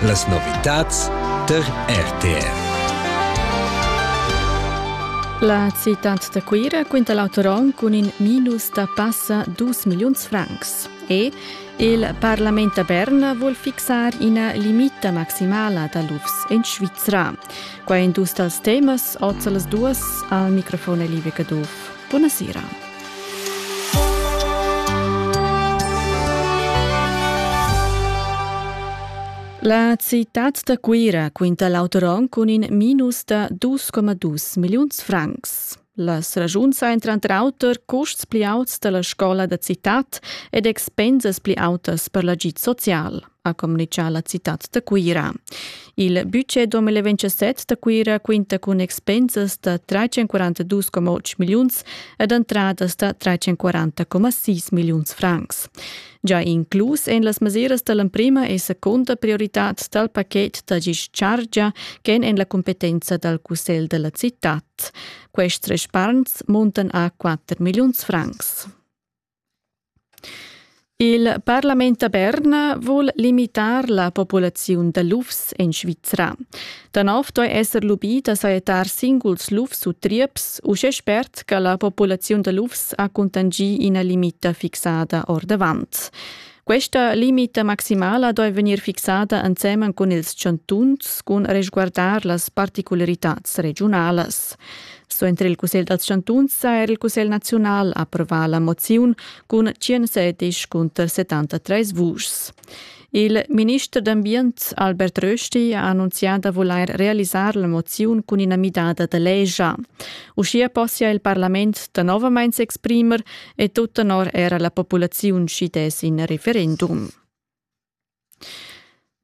Las novitads tar RTR. La citad da Cuira quinta l'autoron cun in minus da passa 2 milliuns francs. E il Parlament da Berna vuol fixar ina limita maximala da lufs en Svizra. Qua è dus dals temas, oz las duas, al microfon è Live Caduff. Buonasera. La citad da Cuira quinta l'auter onn cun in minus da 2,2 milliuns francs. Las ragiuns ein tranter auter custs pli auts dalla scola da citad ed expensas pli autas per l'agid social. ha communichà la citad da Cuira. Il budget 2027 da Cuira quinta cun expensas da 342,8 milliuns ed entradas da 340,6 milliuns francs. Già inclus en las mesiras da l'emprima e seconda prioritad dal pachet da gis chargia ch'èn en la competenza dal cussegl da la citad. Quests respargns muntan a 4 milliuns francs. Il parlament da Berna vul limitar la populaziun da lufs en Svizra. Da nov doi esser lubì da sajettar singuls lufs u trieps, uschè spert che la populaziun da lufs ha cuntangì ina limita fixada ordavant. Questa limita maximala doi vegnir fixada ensemen cun ils chantuns cun resguardar las particularitats regionalas. So entri il Cussegl dals chantuns ha er il Cussegl naziunal approvar la moziun cun 117 cunter 73 vuschs. Il minister d'ambient Albert Rösti ha annunziato da voler realizzare la mozione con una midada de legge. Uschia possia il Parlament da nuovamente exprimer e tut tenor era la populaziun schi dess in referendum.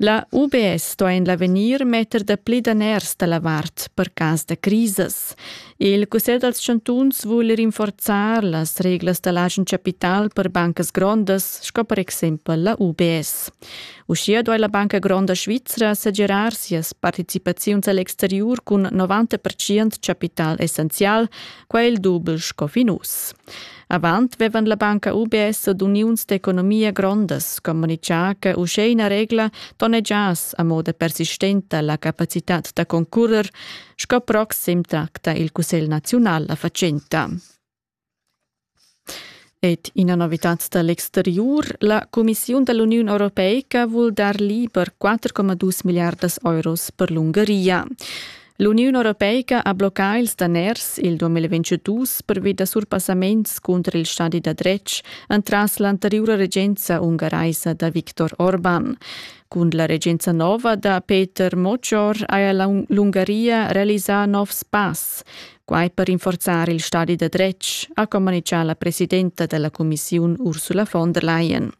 La UBS sto en l'avegnir metter da pli daners da la vart per cas da crisis. Il Cussegl dals chantuns vul rinforzar las reglas da l'agen capital per bancas grondas, sco per exempel la UBS. Uschia duai la Banca Gronda Svizra segirar sias participaziuns a l'exteriur cun 90% capital essenzial quel dubel sco fin uss. Avant vevan la banca UBS ad uniuns d'economia grondas communicà che uschè ina regla tonegiass a moda persistenta la capacitad da concurrer, sco proxim tracta il Cussegl naziunal la fatschenta. Ed ina novitad da l'exteriur, la cumissiun da l'Uniun europeica vul dar liber 4,2 milliardas euros per l'Ungaria. L'Uniun europeica ha bloccà ils daners il 2022 pervi da surpassaments cunter il stadi da dretg entras l'anteriura regenza ungaraisa da Viktor Orban. Cun la regenza nova da Peter Mocor haja l'Ungaria realisà novs pass. Quai per rinforzar il stadi da dretg, ha communitgà la presidenta della cumissiun Ursula von der Leyen.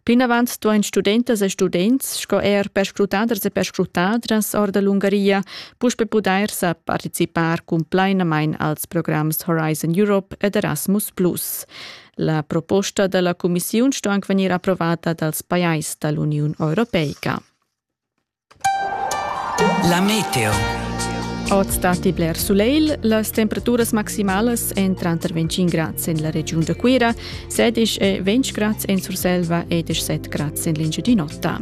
Plinavant duain studentas e students sco er perscrutaders e perscrutadras or da l'Ungaria puspe pudair sa participar cumplainamain als programs Horizon Europe ed Erasmus+. La proposta da la cumissiun sto anc vegnir approvata dals pajais da l'Uniun Europeica. La meteo. Oz datti bler sulegl. Las temperaturas maximalas èn tranter 25 grads en la regiun da Cuira, 16 e 20 grads en Surselva e 17 grads en l'Engiadin'Ota.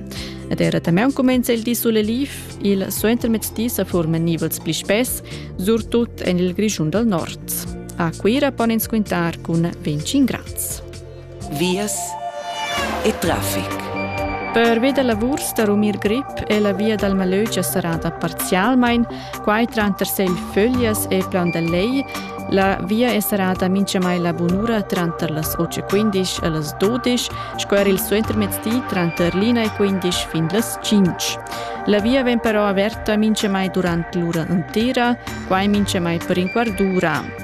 Ed era damaun cumenza il di suleliv. Il suentermezzdi sa forman nivels pli spess, surtut en il Grischun dal Nord. A Cuira pon ins quintar cun 25 grads. vias e traffic. Pervi da lavurs da rumir grip è la via dal Malögia serrada parzialmain, quai tranter Segl Föglias e Plan del Lej. La via è serrada mintgamai la bunura tranter las 8.15 e las 12, sco er il suentermezdi tranter l'ina e 15 fin las 5. La via vegn però averta mintgamai durant l'ura entera, quai mintgamai per in quart d'ura.